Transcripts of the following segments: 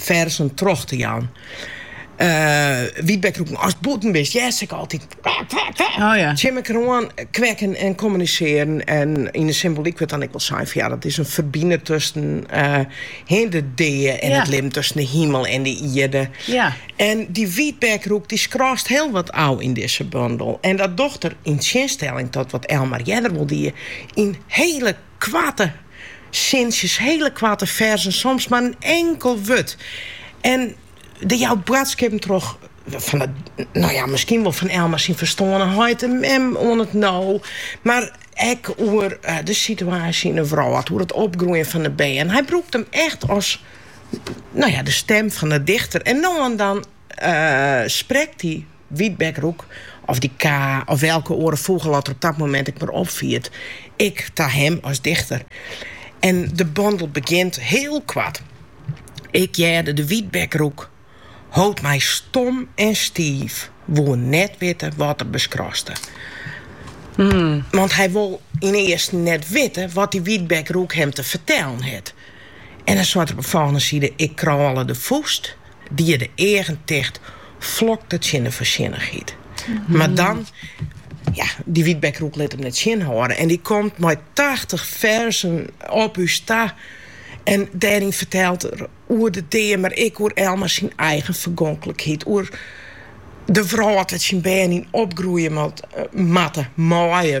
ferzen troch te jaan. Wytbekroeken, ast bûten bist, hearst se ek altyd tsjin mekker oan kwekken en kommunisearjen. En yn de symbolyk wurdt dan ek wol sein fan ja, dat is in ferbinder tusken de dea en it libben, tusken de himel en de ierde. En dy wytbekroek dy skraast hiel wat ôf yn dizze bondel. En dat docht er, yn tsjinstelling ta wat Elmar earder wol die, yn hiele Koarte sintsjes, hiele koarte ferzen, soms mar in inkel wurd. En dy jout boadskippen troch fan eh, no ja, miskien wol fan Elmar syn ferstoarne heit en mem oan it no. Mar ek oer de situaasje yn 'e wrâld, oer it opgroeien fan 'e bern. Hy brûkt him echt as, no ja, de stem fan 'e dichter en no en dan. Sprekt dy wytbekroek of dy ka of wêlke oare fûgel at er op dat momint ek mar opfiert, ek ta him as dichter. En de bondel begjint hiel koart, Ik hearde de wytbekroek, hold my stom en stiif, woe net witte wat er beskraste. Want hy wol yn earsten net witte wat dy wytbekroek him te fertellen hat. En dan seit er op 'e folgjende side, Ik krôle de fûst. Die de eagen ticht flokte tsjin 'e foarsjennichheid. Mar dan, ja, dy wytbekroek lit him net tsjinhâlde. En dy komt mei tachtich ferzen op ús ta. En dêryn fertelt er oer de dea, mar ek oer Elmar syn eigen fergonklikheid. Oer de wrâld dêr't syn bern yn opgroeie moatte, meie.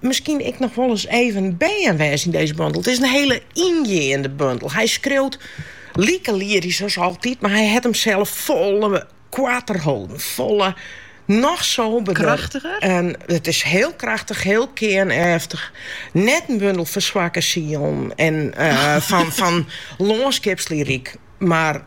miskien ek noch wolris even bern wêze yn dizze bundel. It is in hiele yngeande bundel. Hy skriuwt like lyrysk as altyd, mar hy hat himsels folle koarter holden, folle noch soberder. En it is hiel krachtich, hiel kearneftich. Net in bundel foar swakke sielen en fan lânskipslyryk, mar.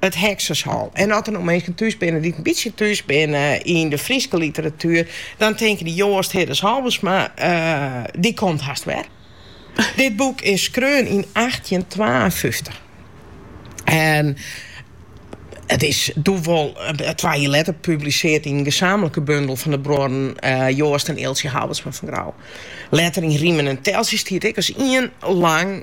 it Heksershol. En as der no minsken thús binne dy't in bytsje thús binne yn de Fryske literatuer, dan tinke dy Joast Hiddes Halbertsma, eh, dy komt hast wer. Dit boek is skreaun yn achttjinentwaenfyftich. En it is doe wol eh, twa jier letter publiseard yn in gesamenlike bundel fan de bruorren eh, Joast en Eeltsje Halbertsma fan Grou. Letter yn Rimen en Teltsjes stiet ek as ien lang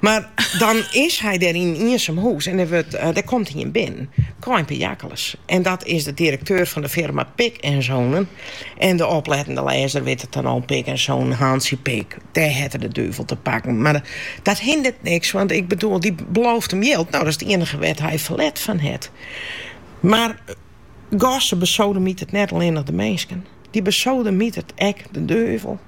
Mar dan is hy dêr yn in iensum hûs en dêr komt ien binnen, Kaïn Piakkeles. En dat is de direkteur fan de firma Pik en Zonen. En de oplettende lêzer wit it dan al, Pik en Zonen, Hantsje Pik, dêr hat er de duvel te pakken. Mar dat hindert niks, want ik bedoel, dy belooft him jild. No, dat is it iennige wêr't hy ferlet fan hat. Mar Gosse besodemitert net allinnich de minsken, dy besodemitert ek de duvel.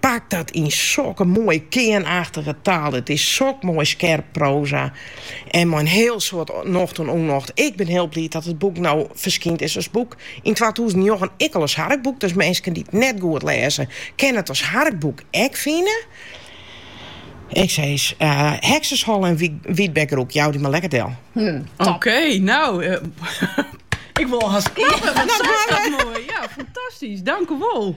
Pak dat yn sokke moaie kearnachtige taal. It is sok moai skerp proza en mei in hiel soad nocht en ûnnocht. Ik bin hiel bliid dat it boek no ferskynd is as boek. Yn twatûzen njoggen ek al as harkboek, dus minsken dy't it net goed lêze kinne it as harkboek ek fine. Ik sis, Heksershol en Wyb de Roek, jou jo mar lekker del. Oké, nou, ik wol hast klappen, wat sast dat moai. Ja, fantastysk, dankewol.